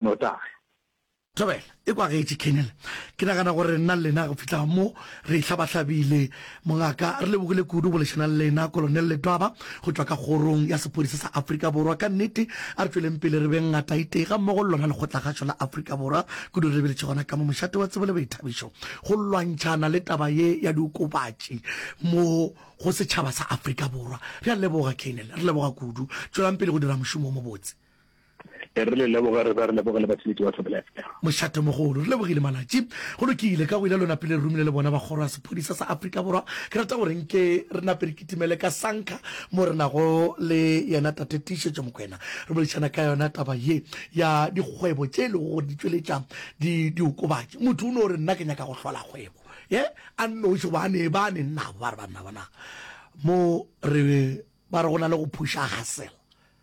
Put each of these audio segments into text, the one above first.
notagi. Thobela, ekwa gaetši Colonel, ke nagana gore nna le lena go fihla mo re hlabahlabile. Mongaka, re lebogile kudu go boledišana le lena. Kolonel Letwaba go tšwa ka Kgorong ya Sepodisa sa Afrika Borwa, ka nnete a re tšweleng pele re beng ngataitee gammogo le lona lekgotlakgašo la Afrika Borwa. Kudu re lebeletše gona ka mo mošate wa tsebo le boithabišo go lwantšhana le taba ye ya diokobatši mo go setšhaba sa Afrika Borwa. Re a leboga, Colonel. Re leboga kudu. Tšwelang pele go dira mošomo wo mobotse. e re le leboge re be re leboge le batheletši ba thobelefm mošatomogolo re lebogile malatši go lokile ka go ile lona pele re romile le bona ba kgoro ya sephodisa sa afrika borwa ke rata gore nke re nape re kitimele ka sanka mo re nago le yena tate tiišetšo mokwena re boledišana ka yona taba ye ya dikgwebo tše e lego gore di tšweletša diokobatši motho o no re nna ke nyaka go hlola kgwebo ye a nnoši ba ne ba ne nnabo ba re ba nna bona mo re ba re go na le go phuša gasela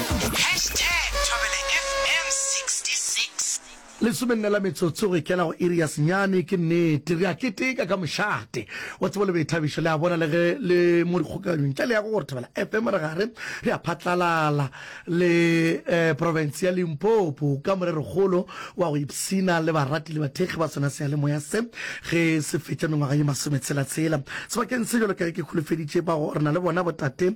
Hashtag ThobelaFM66. Lesome nne la metsotso go ikela go iri ya senyane. Ke nnete re a keteka ka mošate wa tsebo le boithabišo, le a bona, le ge le mo dikgokaganyong. Ntle le ya go gore Thobela FM re gare re a phatlalala le um profense ya Limpopo ka morerokgolo wa go ipshina le barati le bathekgi ba sona seyalemoya se ge se fetša mengwaga ye masometshela-tshela. Sebakeng se jalo ka ge ke holofeditše ba go re na le bona botate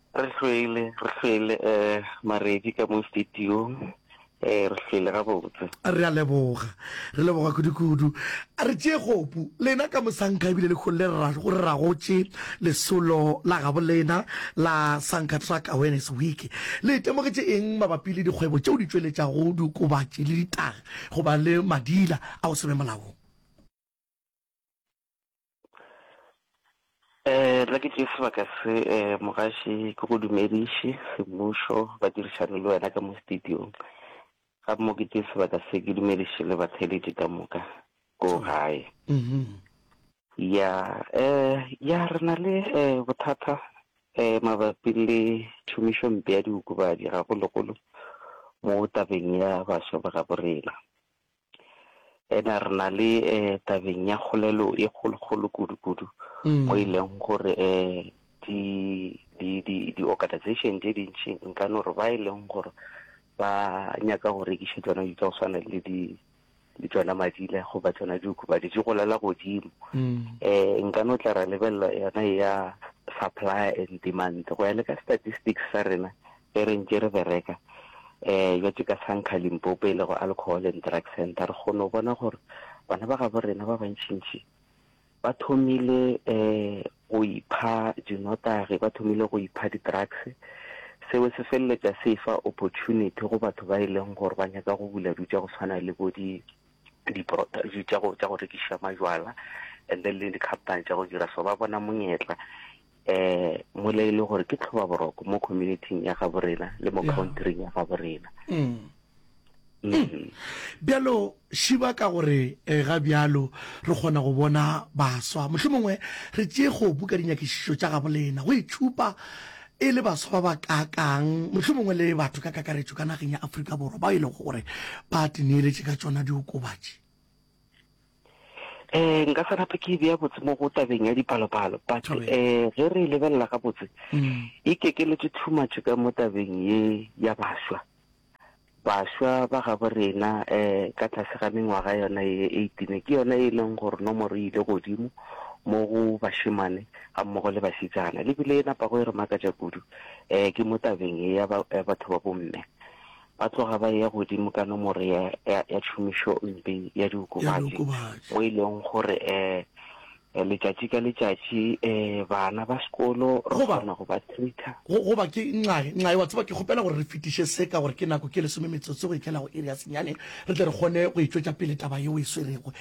Re hlwele, re hlwele Maredi ka mo studiong, re hlwele gabotse. Re a leboga, re leboga kudu-kudu. A re tšee kgopu, lena ka mosanka ebile lekgong le re ra go re ra gotše lesolo la gabolena la Sanka Truck Awareness Week. Le itemogetše eng mabapi le dikgwebo tšeo di tšweletšago diokobatši le ditaga go ba le madila a go se be molaong? Eh, la ke tšee sebaka se eh, mogaši ke go dumediše semmušo ba dirišane le wena ka mo studiong ga mo ke tšee sebaka se ke dumediše le batheletši ka moka ko mm. gae mm-hmm. ya eh ya re na le eh, bothata eh, mabapi le tšhomišo mpe ya diokobatši gagologolo mo tabeng ya baswa ba ga borena Ena re na le tabeng ya kgolelo e kgolokgolo kudu-kudu mo e leng gore di-organization tše dintši nka no re ba e leng gore ba nyaka go rekiša tsona di tsa go swana le di le tsona madila go ba tsona diku ba di tse golela godimo um nka no tla ra lebelela yona ya supply and demand go ya le ka statistics sa rena Ge re ntše re bereka bjatše ka Sankha, Limpopo, e lego Alcohol and Drug Centre, re kgone go bona gore bana ba gabo rena ba bantšintši ba thomile go ipha dinotagi, ba thomile go ipha di-drugs. Seo se feleletša se efa opportunity go batho ba e leng gore ba nyaka go bula dilo tša go tshwana le bo di tša go rekiša majwala and then le di-company tša go dira so. Ba bona monyetla eh mola e le gore ke tlhoba boroko mo communityng ya gabo rena le mo countryng ya gabo rena mm. Mm. bjalo šiba ka gore eh, ga bjalo re kgona go bona baswa mohlho mongwe re tšee go buka dinyakišišo tša gabo lena go itšhupa e le baswa ba ba kakang mohlho mongwe le batho ka kakaretšo ka nageng ya aforika borwa ba e lego gore ba tineeletše ka tšona diokobatši eh nka sa rata ke bea botse mo go tabeng ya dipalopalo but um ge re e lebelela ga botse mm. e kekeletse too much ka mo tabeng ye ya baswa baswa ba gabo rena um ka tlase ga mengwaga yona ye eightine ke yona e leng gore nomoro e ile godimo mo go bashemane ga mmogo le basetsana lebile e napago e re makatša kudu um ke mo tabeng e ya batho ba bomme ba tloga ba eya godimo ka nomoro ya, ya, ya tšhomišompe ya diokobatši, mo e leng gore um letšatši ka letšatši um bana ba sekolo re kgona go ba treater. Goba ke ncae, ncae, wa tseba ke kgopela gore re fetiše se ka gore ke nako ke lesome metsotso go etlela go iri ya senyane, re tle re kgone go e tšwetša pele taba ye o e swerego.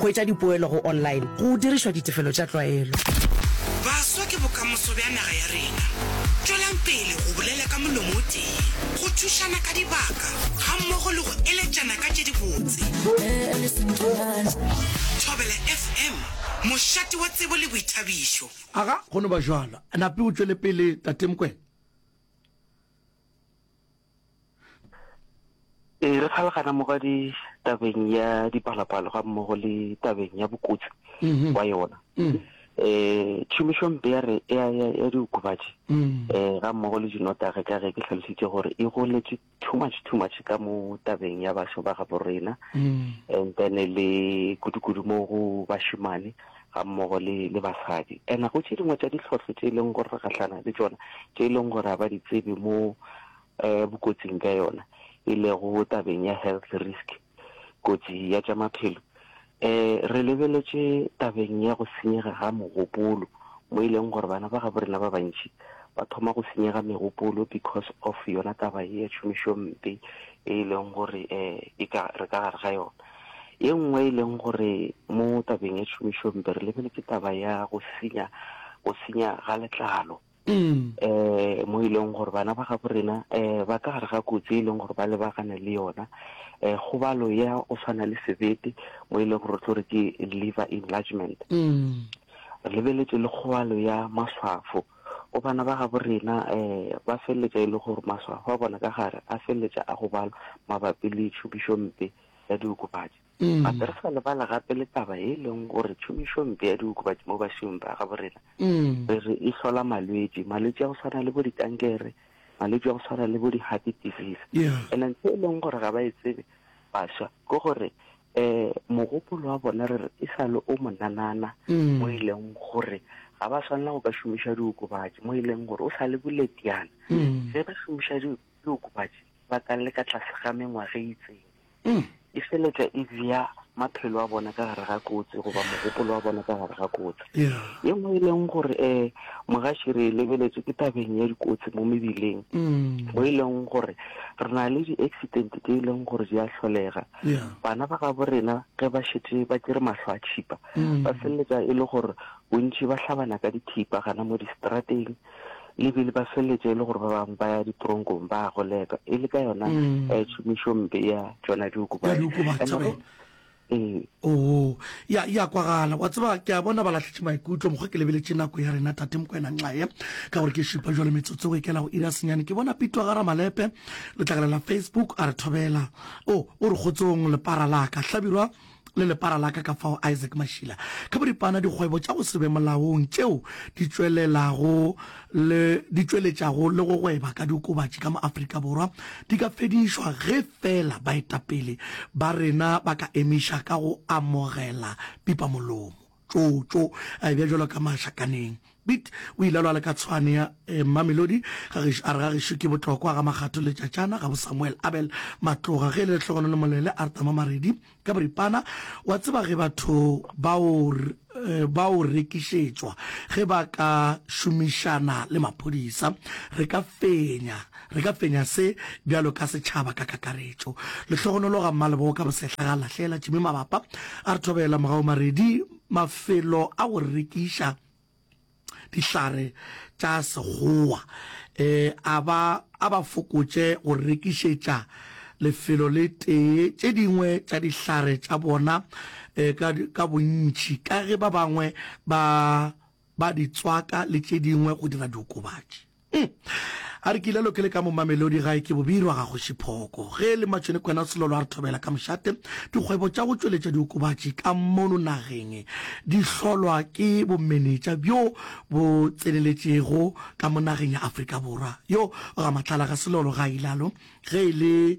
Hwetša dipoelo go online go dirišwa ditefelo tša tlwaelo. Baswa ke bokamoso bja naga ya rena. Tšwelang pele go bolela ka molomo o tee, go thušana ka dibaka gammogo le go eletšana ka tše dibotse. Thobela FM, mošate wa tsebo le boithabišo. Aga, go no ba bjalo. Nape o tšwele pele, Tate Mokwena. Ee, re kgalagana mo ga ditabeng ya dipalapalo ga mmogo le tabeng ya bokotsi mhm. wa yona um mm. eh, tšhomišompe ya re ya diokobatši um mm. eh, ga mmogo le dinotage ka ge ke tlhalositse gore e goletse too much too much ka mo tabeng ya bašo ba gabo rena mm. and then le kudukudu mo go bašimane gammogo le, le basadi. And go tše dingwe tša dihlhohlo tše e leng gore re gahlana le tšona, tše e leng gore ga ba di tsebe mo um bokotsing bja yona, e lego tabeng ya health risk, kotsi ya tša maphelo. Um re lebeletše tabeng ya go senyega ga mogopolo, mo e leng gore bana ba gabo rena ba bantši ba thoma go senyega megopolo because of yona taba ye ya tšhomišompe e e leng gore um e ka, re ka gare ga yona. Ye nngwe e leng gore mo tabeng ya tšhomišo mpe re lebeletse ke taba ya go senya, go senya ga letlalo. um mo e leng gore bana ba gabo rena um ba ka gare ga kotsi e leng gore ba lebagane le yona, um kgobalo ya go tshwana le sebete mo e leng gore re tlo re ke liver enlargement. um Re lebeletse le kgobalo ya maswafo. Go bana ba gabo rena, ba feleletša e le gore maswafo a bona ka gare a feleletša a gobala mabapi le tšhomišompe ya diokobatši. Gape re sa lebala gape le taba e leng gore tšhomišompe ya diokobatši mo bašemong ba gabo rena re re e hlola malwetši, malwetši a go swana le bo dikankere, malwetši a go swana le bo di-heart disease. And-e ntho e leng gore ga ba e tsebe baswa ke gore Ee, mogopolo wa bona re re e sa le o monanana mo e leng gore ga ba swanela go ka šomiša diokobatši mo e leng gore o sa le boletiana ge ba šomiša di- diokobatši ba ka le ka tlase ga mengwaga e itseng e feletša e bea maphelo a bona ka gare ga kotsi goba mogopolo wa bona ka gare ga kotsi ye nngwe e leng gore um mogaši re e lebeletse ke tabeng ya dikotsi mo mebileng mo e leng gore re na le di-accident tse e leng gore di a tlholega Bana ba gabo rena ge ba šetše ba tšere mahlo a tšhipa, ba feleletša e le gore bontši ba hlabana ka dithipa gana mo distrateng, le bile ba feleletša e le gore ba bangwe ba ya ditronkong ba a goleka, e le ka yona eh, tšhomišo mpe ya tšona diokobatši. Ee. Oo, ya, ya kwagala. Wa tseba, ke a bona ba lahletše maikutlo, mokgwa ke lebeletše nako ya rena, Tate Mokwena Nxaye, ka gore ke šipa jwale metsotso e kela go ira senyane. Ke bona Pitwa Garamalepe, letlakala la Facebook, a re thobela. O, o re, Kgotsong, lepara la ka, hlabirwa, le lepara la ka ka fao, Isaac Mashila, ka boripana, dikgwebo tša go se be molaong tšeo di tšwelelago le, di tšweletšago le go gweba ka diokobatši ka mo Afrika Borwa di ka fedišwa ge feela baetapele ba rena ba ka emiša ka go amogela pipamolomo. tšo tšo a ebja jalo ka mašakaneng. Bit o ile a lwa le ka tshwane ya eh, Mmamelodi ga gešo a re ga gešo ke botlokwa ga makgatho le tšatšana ga bo Samuel Abel Matloga ge e le lehlogono le molele a re tama maredi ka boripana wa tseba ge batho bao eh, bao rekišetšwa ge ba ka šomišana le maphodisa re ka fenya Re ka fenya se bjalo ka setšhaba ka kakaretšo. Lehlogonolo ga Mmalebogo ka bosehla ga a lahlela Jimmy mabapa, a re thobela morago maredi mafelo a go rekiša dihlare tša Sekgowa, e a ba a ba fokotše go rekišetša lefelo le tee tše dingwe tša dihlare tša bona e ka ka bontši ka ge ba bangwe ba ba di tswaka le tše dingwe go dira diokobatši. Hm. A re ke ile lokele ka mo Mamelodi gae ke bobirwa ga Kgoši Phoko. Ge e le Matšhone Kwena Selolo a re thobela ka mošate, dikgwebo tša go tšweletša diokobatši ka mono nageng di hlolwa ke bomenetša bjo bo tseneletšego ka mo nageng ya Afrika Borwa. Yo ga Matlala ga Selolo ga a ilalo ge e le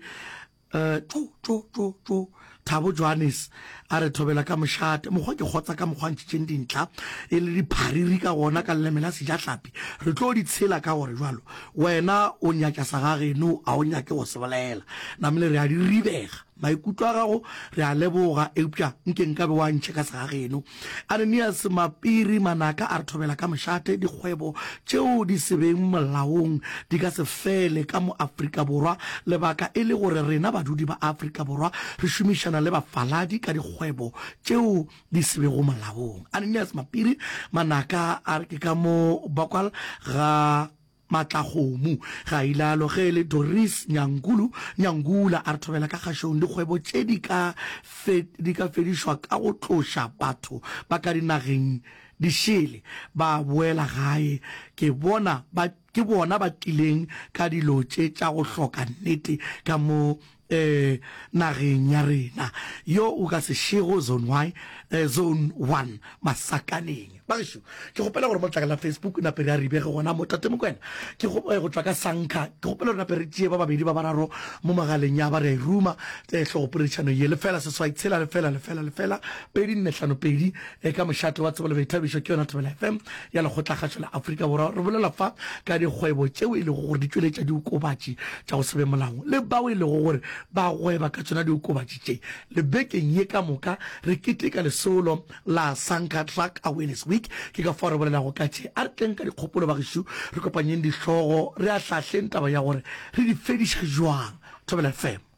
Uh, tšu, tšu, tšu, tšu. Thabo Johannes a re thobela ka mošate mokgwa ke kgotsa ka mokgwa ntšhitšeng dintlha e le diphariri ka gona ka leleme la sejahlapi re tlo di tshela ka gore jalo wena o nyatša sa gageno a o nyake go se bolela namele re a di ribega maikutlo a gago re a leboga eupša nke nka be wa ntšhe ka sa gageno Ananias Mapiri Manaka a re thobela ka mošate dikgwebo tšeo di se beng molaong di ka se fele ka mo Afrika Borwa lebaka e le gore rena badudi ba Afrika Borwa re šomišana le bafaladi ka dikgwebo tšeo di se bego molaong. Ananias Mapiri Manaka a re ke ka mo bakwal ga Matlakgomo, ga ilalo ge e le Doris Nyankulu Nyangula a re thobela ka kgašong dikgwebo tše di ka fe di ka fedišwa ka go tloša batho ba ka dinageng di šele ba boela gae ke bona ba ke bona ba tlileng ka dilo tše tša go hloka nnete ka mo nageng ya rena yo o ka se šego zone y zone one masakaneng bagešo ke kgopela gore mo tlakala facebook nape re a ribe ge gona motate mokwena ke go tšwa ka sankha ke kgopela gore nape re tšee ba babedi ba bararo mo magaleng ya ba re a iruma tlhogopoletšano ye lefela seswai tshela lefela lefela lefela pedi nne hlano pedi le ka mošate wa tsebo le boithabišo ke yona Thobela FM ya lekgotlakgašo la Afrika Borwa. Re bolela fa ka dikgwebo tšeo e lego gore di tšweletša diokobatši tša go se be molaong le bao e lego gore ba gweba ka tšona diokobatši tše. Le bekeng ye ka moka re keteka lesolo la Sanka Truck Awareness Week, ke ka fao re bolelago ka tše. A re tleng ka dikgopolo bagešo, re kopanyeng dihlogo, re ahlaahleng taba ya gore re di fediša bjang. Thobela FM.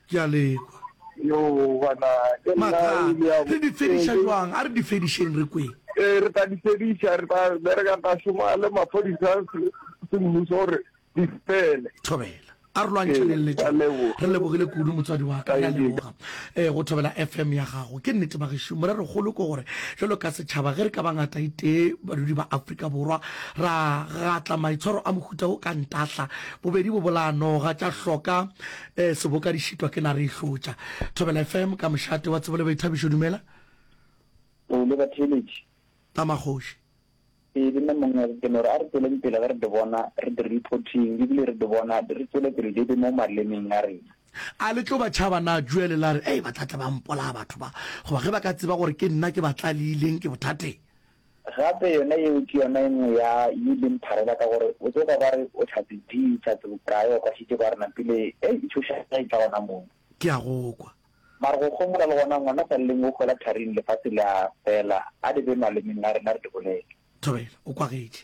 Ke a le kwa. Yoo, bana, ke nna Mathata. o ile a bo. Re di fediša Ee, ke. bjang? A re di fedišeng re kweng. Ee, re tla di fediša. Re tla bereka, re tla šoma le maphodisa a se, semmuso gore di fele. Thobela. A re lwantšhaneng Ee, le ke a tšona. leboga. Re lebogile kudu, motswadi wa ka. Re a Thank you. leboga eh, go thobela FM ya gago. Ke nnete, bagešo. Morerokgolo ke gore bjalo ka setšhaba, ge re ka ba ngataitee badudi ba Afrika Borwa, ra gatla maitshwaro a mohuta wo ka ntahla, bobedi bo bolaya noga, tša hloka Ee, seboka di šitwa ke nare e hlotša. Thobela FM ka mošate wa tsebo le boithabišo, dumela. O le batheeletši. Ka magoši. Ee, le nna mongwe re temo re a re tsweleng pele ge re di bona re di reporting ebile re di bona re tswele pele di be mo malemeng a rena. A le tlo ba tšhaba na juele la re ei ba tlatla ba mpolaya batho ba goba ge ba ka tseba gore ke nna ke ba tlalileng ke bothateng. Gape yona yeo ke yona e nngwe ya ye e leng pharela ka gore o tsoga ba re o tlhatse di, tlhatse bokae, o kwashitše ba re napile ei e tšhoša ge e tla gona moo. Ke a go kwa. Mara go homola le gona ngwana sa lleng o gola tharing lefase le a fela a di be malemeng a rena re di bolele. Thobela o kwagetše.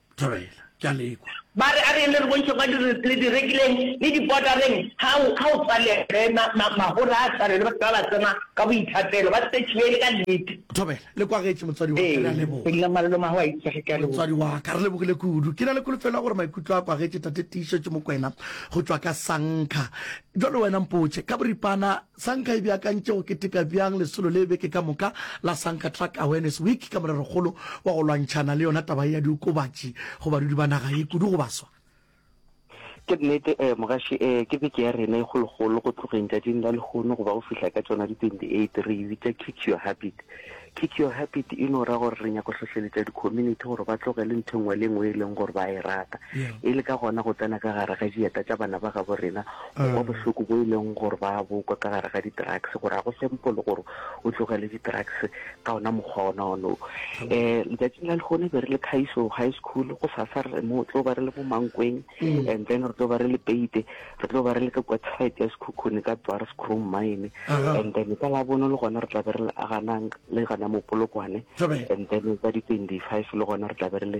Thobela, ke a le kwa. Ba re, A re yenne re bontšhe kwa direkeleng le dibodareng ga go tswalege magora a tshwane le batho ba ba tsena ka boithapelo, ba tsetšiwe e le ka nnete. Thobela, Le kwagetše, motswadi wa ka. Re a leboga. Ee, nna malolo mago a itsege. Ke a leboga. Motswadi wa ka, re lebogile kudu. Ke na le kholofelo ya gore maikutlo a kwagetše Tate Tiišetšo Mokwena go tšwa ka Sankha. Bjale wena mpotše, ka boripana, Sa nka e beakantše go keteka bjang lesolo le beke ka moka la Sanka Truck Awareness Week ka morerokgolo wa go lwantšhana le yona taba ye ya diokobatši go badudi ba naga ye, kudu go baswa? Ke nnete eh mogaši eh ke beke ya rena e kgolokgolo go tlogeng tšatšing la lehono go ba go fihla ka tšona di 28 re e bitša Kick Your Habit. Kick Your Habit e no ra gore re nyako hlohleletša di-community gore ba tlogele ntho engwe le engwe e leng gore ba e rata e le ka gona go tsena ka gare ga dieta tša bana ba gabo rena go kwa bohloko bo e leng gore ba bokwa ka gare ga di-drugs gore ga go sempo le gore o tlogele di-drugs ka ona mokgwa ona ono um eh, letsatsing la lekgone be re le khaiso high school go sasa re mo tlo ba re le mo mankweng mm. and then re tlo ba re le peite re tlo ba re le ka kwa site ya sekhukhune ka dwars chrome mine and then ka la bono le gona re tla be re le aganang le gana mopolokwane and then ka di-twenty five le gona re tla be re le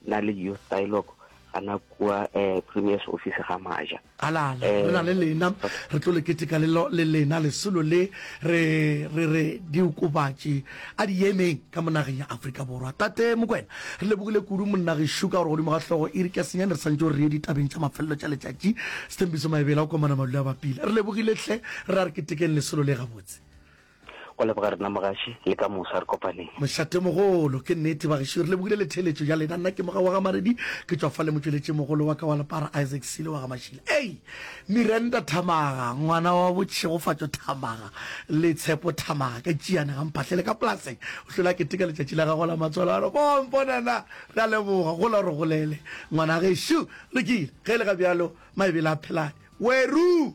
na le youth dialogue gana kua um premiers office ga maja alala re na le lena re tlo le keteka le lena lesolo le re re re diokobatši a di emeng ka mo nageng ya Afrika Borwa. Tate Mokwena, re lebogile kudu monna gešo ka gore godimo ga hlogo e re ka senyane re santše o re ye ditabeng tša mafelelo tša letšatši. Sethembiso Maebela o komana Malule a bapile. Re lebogile hle, re a re ketekeng lesolo le gabotse. Go leboga rena mogaši, le ka mosa re kopaneng. Mošatemogolo, Ke nnete bagešo, re lebogile le theeletšo ya lena. Nna ke Mogaowa Gamaredi, ke tšwa fa le motšweletšimogolo wa ka wa Lepara Isaac Silo wa Gamashila. Ei! Miranda Thamaga, ngwana wa bo Tšhegofatšo Thamaga le Tshepo Thamaga ka Tšiyane ga Mphahlele ka polaseng, o hlwele a keteka letšatši la gagwe la matswalo a re, Mo mpona na? Re a leboga, gola o re golele ngwana gešu. Lokile, ge e le ga bjalo, Maebele a phelane. Weruu!